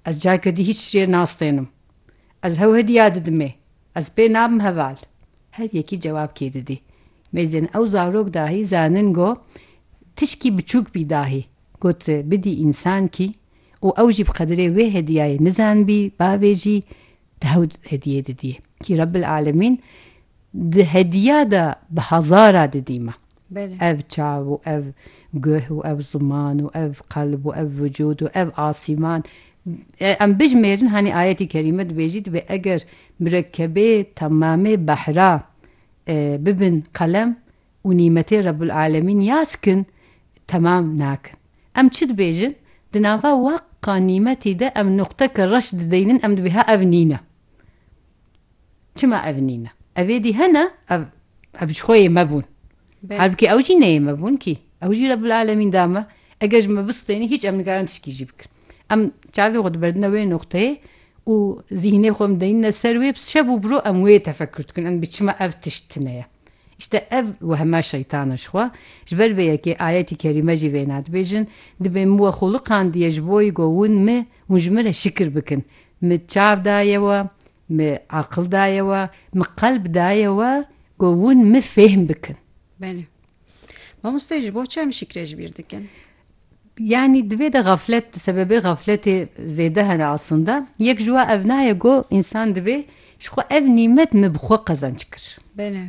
Ez careke dî hîç jê nastênim. Ez hew hediya didimê. Ez pê nabim heval. Her yekî cewab kê didî. Mêzên ew zarok dahî zanin go tişkî biçûk bî dahî got bidî însankî û ew jî bi qedirê wê hediyayê nizanbî bavê jî di hew hediyê didî. Kî Rebbil Alemîn di hediya de bi hezara didî me. Ev çav û ev guh û ev ziman û ev qelb û ev vücûd û ev asîman em bijimêrin hanî ayetî kerîme dibêjî dibê eger mirekkebê temamê behra bibin qelem û nîmetê Rebul Alemîn ya skin temam nakin. Em çi dibêjin? Di nava waqqa nîmetî de em nuqteke reş dideynin em dibê ha ev nîne. Çima ev nîne? Ev êdî hene, ev ev ji xwe yê me bûn. Halbukî ew jî neyê me bûn kî. Ew jî Rebbul Alemîn da me. Eger ji me bistênî hîç em nikarin tişkî jî bikin. Em çavê xwe diberdine wê noqteyê û zîhnê xwe em deyîne ser wê şev û biro em wê tefekur dikin em bi çima ev tişt tune ye. İşte ev wehma şeytana ji xwe. Ji ber vê yekê ayetî kerîme jî vêna dibêjin, dibê min we xwe liqandiye ji bo wî ku hûn mi hûn ji min re şikir bikin. Min çav daye we, min aqil daye we, min qelb daye we ku hûn min fêhm bikin. Belê. Mamoste ji bo çi em şîkrê ji bîr dikin? Yani divê de gaflet, sebebê gafletê zêde hene aslında. Yek ji we ev naye ku insan divê ji xwe ev nîmet min bi xwe qezenç kir. Belê.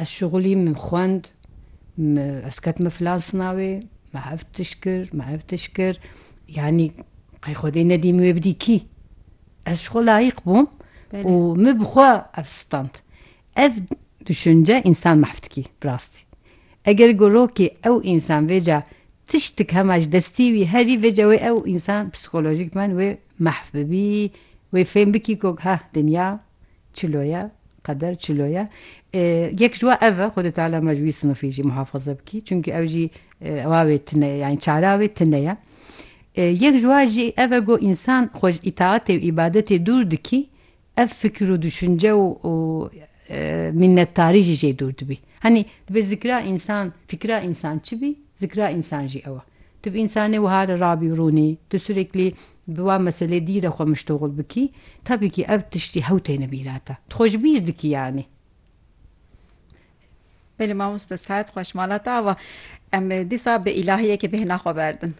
Ez şixulî min xwend, ez ketime filan sinavê, me ev tişt kir, me ev tişt kir, yanî qey Xwedê nedîm wê bidî kî? Ez ji xwe layîq bûm û min bi xwe ev stand. Ev duşince însan mahv dikî bi rastî. Eger ku rokê ew însan vêca tiştik hema ji destî wî herî vêca wê ew însan psîkolojîkman wê mahv bibî, wê fêm bikî ku ha dinya Çilo ye, qeder çilo ye. Yek ji wan ev e, Xwedê Teala me ji wî sinifî jî muhafaze bikî. Çimkî ew jî ewa wê tune ye, yanî çara wê tune ye. Yek ji wan jî ev e ku însan xwe ji îtaatê û îbadetê dûr dikî, ev fikir û duşince û mînnetdarî jî jê dûr dibî. Hanî dibê zikra însan, fikra însan çi bî, zikra însan jî ew e. Tu bi însanê wiha re rabî û rûnî, tu sureklî Bi wan meselê dî re xwe miştoxul bikî, tabî kî ev tiştî hew têne bîra te. Tu xwe ji bîr dikî yanî. Belê mamoste sihet xweş mala te ava em dîsa bi îlahiyekê bêhna xwe berdin.